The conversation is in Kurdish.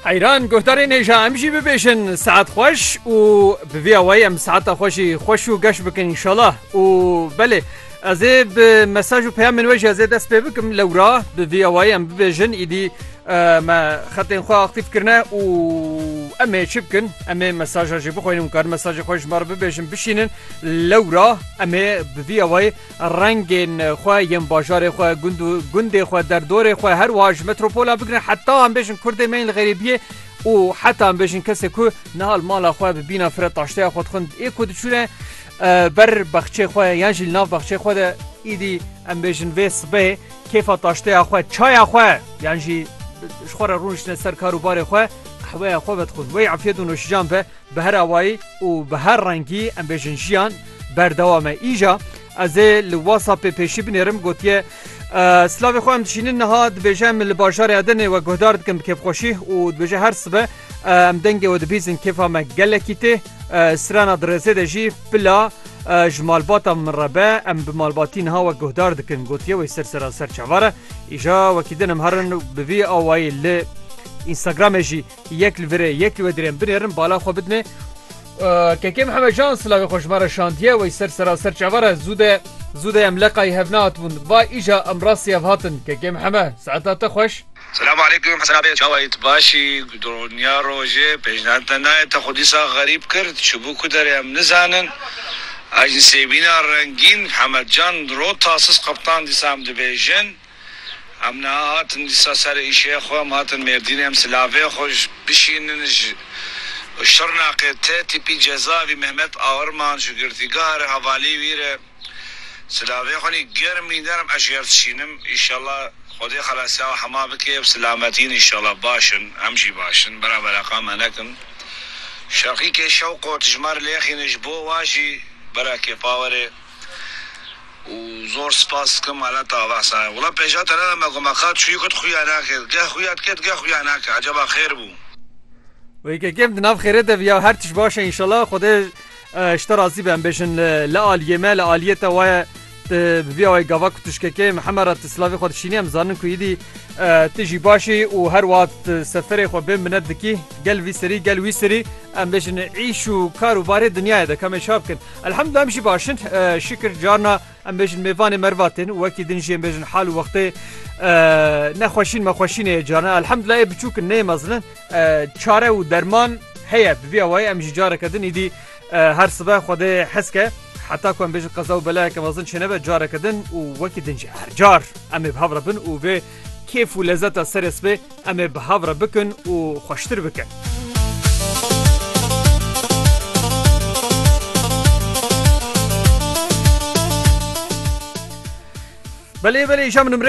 Eyran guhdarê nêja em jî bibêjin saet xweş û bi vî awayî em saeta xwe jî xweş û geş bikin înşallah û belê ez ê bi mesaj û peyamên we jî ez ê dest pê bikim lewra bi vî awayî em bibêjin îdî me xetên xwe aktîf kirine û em ê çi bikin em ê mesaja jî bixwînin û karin mesajê xwe ji me re bibêjin bişînin lewra em ê bi vî awayî Rengên xwe yên bajarê xwe, gund û gundê xwe, derdorê xwe her wiha ji metropolan bigirin heta em bêjin Kurdê me yên li xerîbiyê û heta em bêjin kesê ku niha li mala xwe bi bîna fire taşteya xwe dixwin ê ku diçûne ber bexçê xwe yan jî li nav bexçê xwe de îdî em bêjin vê sibehê kêfa taşteya xwe çaya xwe yan jî ji xwe re rûniştine ser kar û barê xwe qehweya xwe vedixwin wê efiyet û noşijan be Bi her awayî û bi her rengî em bêjin jiyan berdewam e. Îja ez ê li WhatsAppê pêşî binêrim gotiye Silavê xwe em dişînin niha dibêje em li bajarê Edenê we guhdar dikin bi kêfxweşî û dibêje her sibe em dengê we dibîzin kêfa me gelekî tê sirena di rêzê de jî pila ji malbata min re be em bi malbatî niha we guhdar dikin gotiye wê ser sera ser çavare îja wekî din em herin bi vî awayî li Instagramê jî Yek li virê yek li we dirên binêrin bala xwe bidine. Kekê Mihemed Can silavê xwe ji me re şandiye wey ser sera ser çavar e zû de zû de em leqayî hev nehatibûn va îja em rastî hev hatin Kekê Miheme saeta te xweş. Selam aleykum Hesen abi çawa yî tu baş î doniya rojê pejnend te nayê te xwe dîsa xerîb kir çibû ku derê em nizanin a jin sêbîna rengîn Mihemed Can rota siz qeptan dîsa em dibêjin. Em niha hatin dîsa ser îşeyê xwe, em hatin Mêrdînê, em silavê xwe bişînin ji Şirnexê tê tîpî Cezavî Mehmet Aurman ji girtîgeha re hevalî wî re silavê xwe nî germ wî nerm ez ji yer dişînim îşallah Xwedê xelasiya we hema bike ev silamet in îşallah baş in em jî baş in bera bereqan me nekin Şeqîkê Şewqot ji me re lêxîne ji bo we jî bera kêfa were. û zor spas dikim mala te ava Hesanê. Wila pêşa te neveme ku me qat çiyûk it xuya nake. Geh xuya dike dige xuya nake. Ecaba xêr bû. Wê yekekê em di nav xêrê de viya her tişt baş e înşela Xwedê ji te razî be em bêjin li aliyê me li aliyê te waye tu bi viya wê gava ku tişkekê me heme re tu silavê xwe dişînî em zanin ku îdî tu jî başî û her wiha tu seferê xwe bê minet dikî gel vî serî gel wî serî em bêjin îş û kar û barê dinyayê de kamê çav bikin. Elhemdulillah em jî baş in şikir carna em bêjin mêvanê merva tên û wekî din jî em bêjin hal û wextê nexweşîn mexweşînê ye carna elhemdulillah ê biçûk in nê mezin in çare û derman heye bi vîya wayî em jî careke din îdî her sibe xwedê hezke heta ku em bêjin qeza û belayeke mezin çênebe careke din û wekî din jî her car em ê bi hev re bin û vê kêf û lezeta serê sibê Em ê bi hev re bikin û xweştir bikin. Belê belê îşa min nimrê